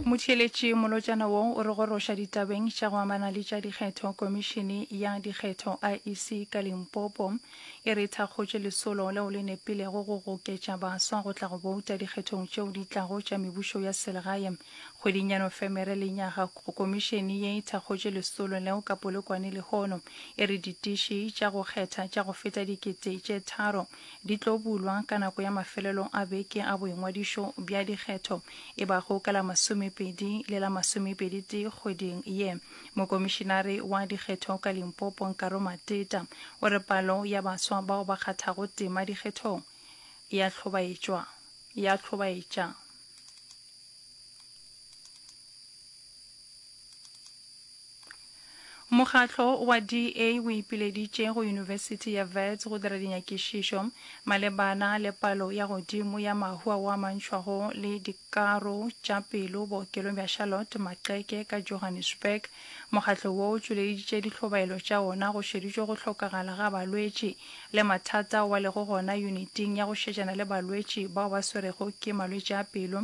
motheeletši molotšana wo o re goroša ditabeng tša go amana le tša dikgetho komišene ya dikgetho iec ka limpopo e re e thakgotše lesolo leo le nepilego go goketša baswa go tla go bouta dikgethong tšeo di tlago tša mebušo ya selegae kgweding ya nofemere le nyaga komišene ye e thakgotše lesolo leo ka polokwane lehono e re ditiši tša go kgetha tša go feta dikete tše tharo di tlo bulwa ka nako ya mafelelong a beke a boingwadišo bja dikgetho e bago ka la masomepedi le la masomepedi-tee kgweding ye. Mokomišinare wa dikgetho ka Limpopo Nkaro Mateta o re palo ya baswa bao ba kgathago tema dikgethong ya hlobaetšwa ya hlobaetša. Mokgatlo wa DA o ipileditše go Yunibesithi ya Wits go dira dinyakišišo malebana le palo ya godimo ya mahu ao a mantšhwago le dikaro tša pelo bookelong bja Charlotte Maxeke ka Johannesburg. Mokgatlo wo o tšweleditše dihlobaelo tša ona go šeditšwe go hlokagala ga balwetši le mathata ao ba lego gona yuniting ya go šetšana le balwetši bao ba swerego ke malwetši a pelo.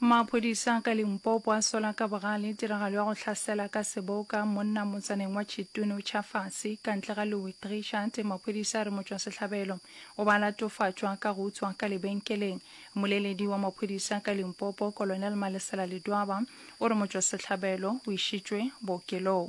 Maphodisa ka Limpopo a sola ka bogale tiragalo ya go hlasela ka seboka monna motsaneng wa Chitunu Chafasi ka ntle ga Louis Trichardt. Maphodisa a re motšwasehlabelo o ba latofatšwa ka go utswa ka lebenkeleng. Moleledi wa maphodisa ka Limpopo, Colonel Malesela Ledwaba o re motšwasehlabelo o išitšwe bookelong.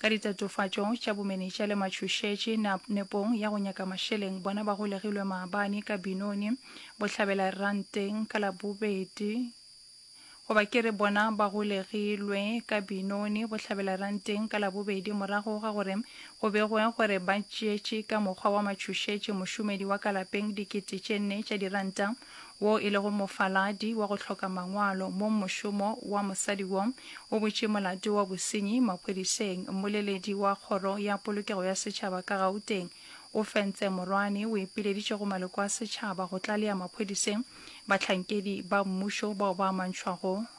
Ka ditatofatšo tša bomenetša le matšhošetše na, nepong ya go nyaka mašeleng, bona ba golegilwe maabane ka Binoni Bohlabela Ranteng ka Labobedi, goba ke re bona ba golegilwe ka Binoni Bohlabela Ranteng ka Labobedi morago ga gore go begwe gore ba tšeetše ka mokgwa wa matšhošetše mošomedi wa ka lapeng dikete tše nne tša diranta. wo e lego mofaladi wa go hloka mangwalo mo mošomo wa mosadi wo o butše molato wa bosenyi maphodiseng Mmoleledi wa Kgoro ya Polokego ya Setšhaba ka Gauteng o Fentse Morwane o ipileditše go maloko a setšhaba go tlalea maphodiseng bahlankedi ba mmušo bao ba amantšhwago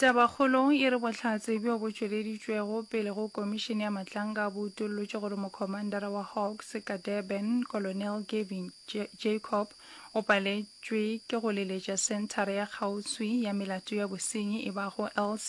Tabakgolo e re bohlatse bjo bo tšweleditšwego pele go Komišene ya Matlanka bo utollotše gore mokhomandara wa Hawks ka Durban, Colonel Gavin Jacob, o paletšwe ke go leletša senthara ya kgauswi ya melato ya bosenyi e bago LC.